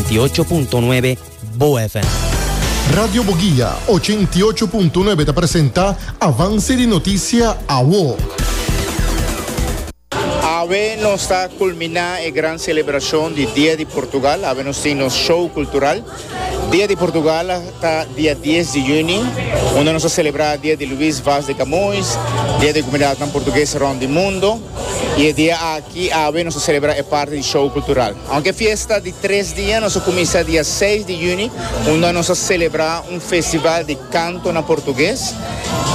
98.9 Boa FM. Radio Boguia, ochenta i ocho punto nuebe ta presenta Avance di Noticia, Awo. Awe nos ta culmina e gran celebracion di Dia di Portugal, awe nos tin nos show cultural. Dia di Portugal ta dia dies di juni, unda nos ta celebra dia di Luis Vaz de Camoes, dia di comunidadnan Portugues rond di mundo. Y e dia aki, awe, nos a celebra e parti di show cultural. Aunke e fiesta di tres dia, nos a cuminsa dia seis di juni, unda nos a celebra un festival di canto na portugues.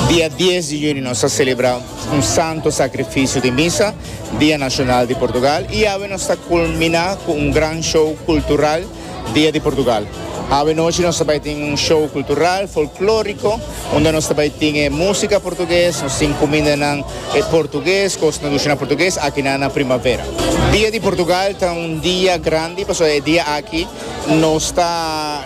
Dia dies di juni nos a celebra un santo sacrificio di misa, dia nacional di Portugal. Y awe nos ta culmina cu un gran show cultural. Dia di Portugal. Awe nochi nos ta bai tin un show kultural, folklóriko, unda nos ta bai tin e músika portuges, nos tin kumindanan portuges, kos tradishonal portuges aki nan na Primavera. Dia di Portugal ta un dia grandi pasobra e dia aki nos ta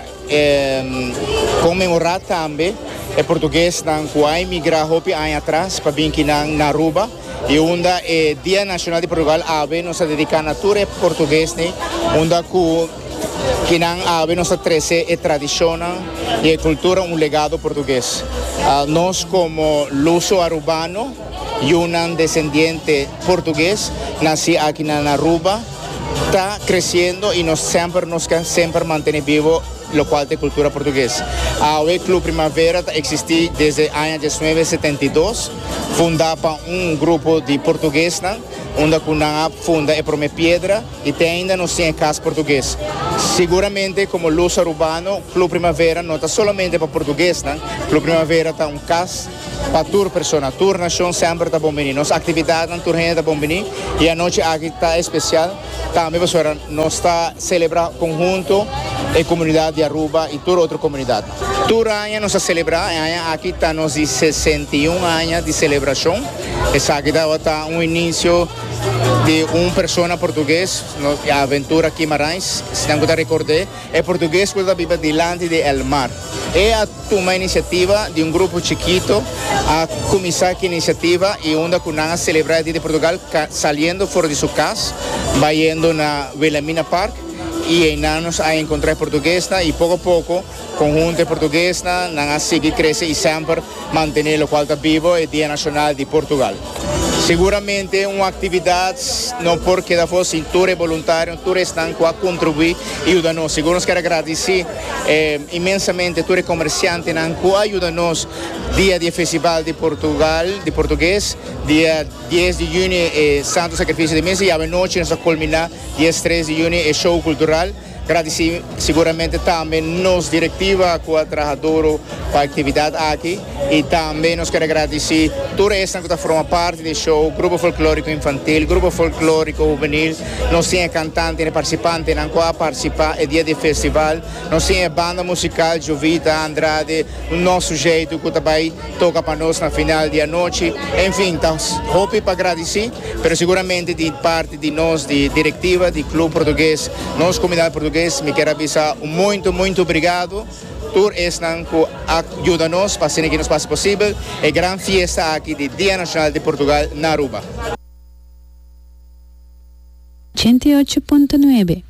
konmemorá tambe e portugesnan ku a emigrá hopi aña atras pa bin kinan na Aruba. I unda e Dia Nashonal di Portugal awe nos ta dediká na tur e portuguesnan unda ku kinan awe nos ta trese e tradishonnan i e kultura un legado portugues. Nos komo luso arubano, yunan desendiente portugues nasí akinan na Aruba, ta kresiendo i nos semper nos ke semper mantené bibo lokual ta e kultura portugues. Awe Club Primavera ta eksistí desde aña dies nuebe setenta i dos. Fundá pa un grupo di portuguesnan, unda ku nan a funda e promé piedra i te ainda nos tin e kas portugues. Siguramente komo Luz Arubano, Club Primavera no ta solamente pa portuguesnan, Club Primavera ta un kas pa tur persona, tur nashon semper ta bon biní. Nos aktividatnan tur hende ta bon biní i anochi aki ta espesial tambe pasobra nos ta selebrá konhunto e komunidat di Aruba i tur otro komunidat. Tur aña nos a selebrá, e aña aki ta nos di sesenta i un aña di selebrashon. Esaki tabata un inisio di un persona portugues, nos di Aventura Guimaraens, si nan ku ta rekord'é, e portugues ku ta biba dilanti di el mar. E a tuma inisiativa di un grupo chikito, a kuminsá ki inisiativa i unda ku nan a selebrá e Dia di Portugal, ka saliendo for di su kas, bayendo na Wilhelmina Park. Y eynan nos a encontra e portuguesnan y poco a poco conhunto e portuguesnan nan a sigui crece y semper mantene locual ta bibo e Dia Nacional di Portugal. Seguramente un actividad no por keda afo sin tur e boluntarionan, tur esnan cu a contribui y yuda nos. Sigur nos kier a gradici inmensamente tur e comerciantenan cu a yuda nos dia di e Festival di Portugal, di portugues, dia dies di juni e Santo Sacrificio di Mes y awe nochi nos a culmina Dies, tres di juni e show kultural. Gradisí siguramente tambe nos direktiva ku a traha duru pa e aktividat aki i tambe nos kere gradisí tur esnan ku ta forma parti di e show, Grupo Folklóriko Infantil, Grupo Folklóriko Hubenil, nos tin e kantante i e partisipantenan ku a partisipá e dia di e festival, nos tin e banda musikal Jovita Andrade, un nò sujeitu ku ta bai toka pa nos na final di anochi. Enfin, ta hopi pa gradisí, pero siguramente di. Di nos di direktiva di Club Portugues, nos komunidat Portugues, mi kier a bisa un muntu muntu brigado tur esnan ku a yuda nos pa haciendo ki nos pasa posibel e gran fiesta aki di Dia Nashonal di Portugal na Aruba. Ochenta i ocho punto nuebe.